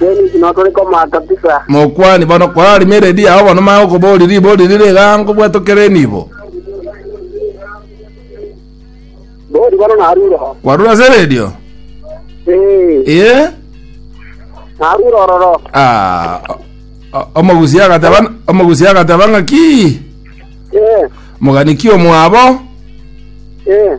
Denis no tore komata pisa. Mokwani bono korari meredi yao bono maya okobori ribori rire igango bwetokere nibo. Bori bono naruro. Kwarura ase redio. Eh, Ee. naruro ororo. Ah. o- Omogusi agateba omogusi agateba ng'aki. Eh, Moganiki omwabo. eh.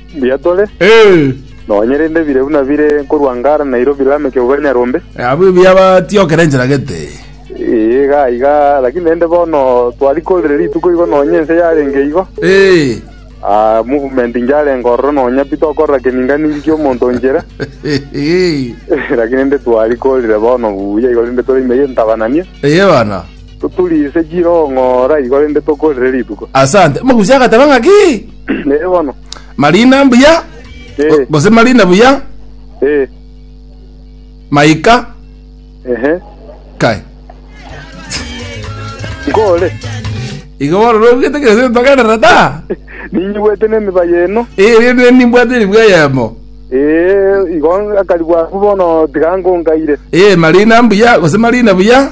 Mbuya tore, Eh, nonya rende bire buna bire nkorwa Ngara Nairobi Lameck Obere Nyarombe. eh, abwo ebiya batiokera enchera gete. Ee, iga iga, lakini rende bono twarikorire rituko igo nonya ense yarenge igo. Eh, Ah, movement njarenga ororo nonya pi tokorora keninga ninki kia omonto onchera. eh, eh, lakini rende twarikorire bono buya igo rende tore ime y'entabanania. eye bana. Toturise chiroho ng'ora igo rende tokorere rituko. Asante. Omogusi agateba ng'a ki? Ee bono. Marina mbuya. Ee. Gose Marina buya. Ee. Maika. Ehe. Kai. Nkore. Igo bono norugete kera seto togenderera ta. Ninyigwete nemiba yeno. Ee rende nimbwate ribwa eyemo. Ee igo akaribwa bono tiga nkonkaire. Ee Marina mbuya gose Marina buya.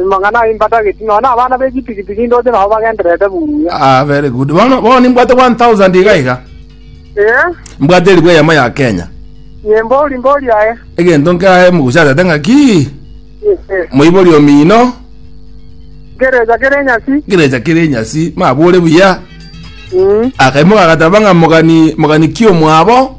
Amang'ana ayio imbatageti, nonya abana be chipikipiki ndoche nabo bagendererete buya. Ah, very good. Bono bono nimbwate 1000 iga iga. Ee, Mbwate eribu eyemo ya Kenya. nyembori mbori aye. Egento nkae mogochasete ng'aki Ee, moibori omino Gereja kere nyasi. gerecha kere nyasi mabore buya. Mm. Akaimoka agateba ng'a mogani mogani ki omwabo.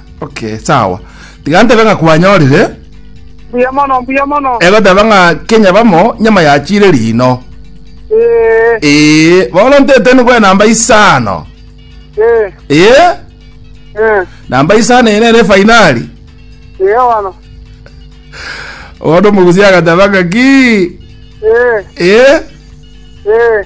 Okay, sawa. Tiga ntebe ng'a kwanyorire. Mbuya mono, mbuya mono. Egoteba ng'a Kenya bamo nyama yachire rino. Eh, Ee, bono ntete nigwe namba isano. eh, Ee, eh. namba isano ene ere fainali. Eh, wano. Bono omogusi agateba ng'a ki. Eh, Ee, eh.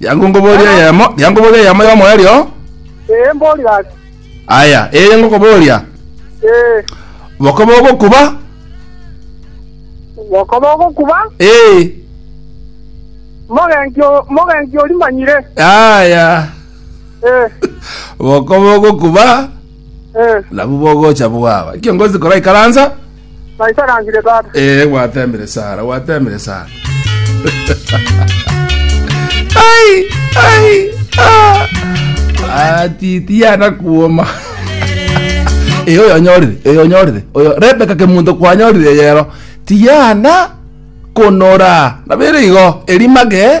Yango ngoboria eyemo, yango ngoboria eyemo y'omoerio. Ee, mbori gaki. Aya, eye ngokoboria. Ee, Boko bogokuba? bokoba ogokuba, Ee. mogenki o- mogenki orimanyire. Aya. Ee, Boko bogokuba, ee. nabu bogocha bwaba. Kiongozi koraikaransa. Naisarangire tata. Ee, gwateemire Sara, gwateemire Sara. Ai, ai, ah. Ah, titi yana kuoma. Ee, oyo onyorire, oyo onyorire, oyo Rebeka kemunto kwanyorire yero. Tiana konora. Nabere igo, erimage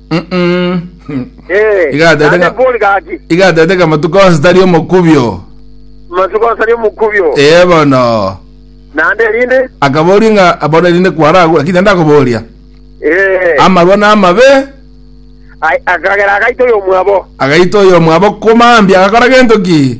Mm-mm. Eh, Iga atete naende nga- bori gaki iga atete ng'a matuko onsi tari omokubio matuko osari omokubio ee bono naende erinde akaboria ng'a bono erinde kwaragu lakini naende akoboria eh, amarwa na amabe ai- akagera agaito yomwabo agaita oyo omwabo komambia agakora gento ki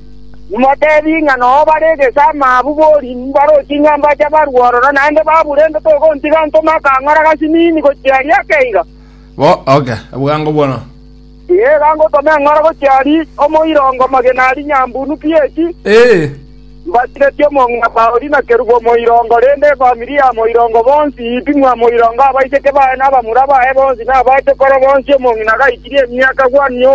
Motebi ng'a noo bare egesama abwo borie mbaroche ng'a mbache barue ororo, naende babura embe togontiga ntome akang'ora gasinini gochia aria ake iga. Bwango bono. Tiga ngotome eng'oro gochia aria omoirongo magena aria nyambunu pieti, mbasiretie omong'ina Pauli na kerubo omoirongo, rende efamiri ya moirongo bonsi ipimwa moirongo abaiseke baye na abamura baye bonsi na abaachokoro bonsi omong'ina gaitirie emiaka Wani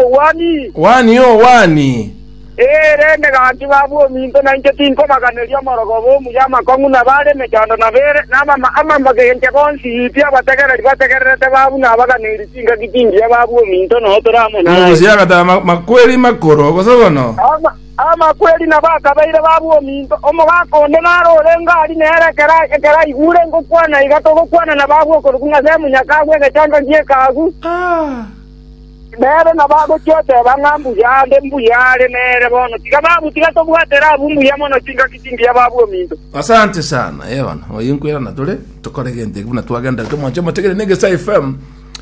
oo Wani. Eirene ganki babue ominto, na inche tinkobaganeria omorogoba omuya amakong'u na baare emechando na beere, na abamagencha bonsi pi abategereri bategererete babue na abaganeiri chingaki chingiya babue ominto nao tore amo naye. Omogusi agataba amakweri makoro gose bono. Amakweri nabo akabeire babue ominto. Omogaka onde nare orenge aria nere ekero ekero aigure ngokwana iga togokwanana babue okoruku ng'ase emonyakabwe egechando gi'ekaagu. Nere nabo agochia oteba ng'a mbuya ande, mbuya are nere bono. Tiga babu, tiga tobwatere abwo mbuya mono chingaki chingiya babu ominto. Asante sana Evan oyo nkwera na tore tokore gento eki buna twagenderete mwanche motegere ne Gesa FM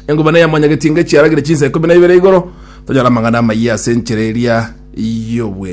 engumana ya mwanyagetinga chiaragire chinsa ikomi na ibere igoro tonyora amang'ana amayia ase enchera eria y'obweng'e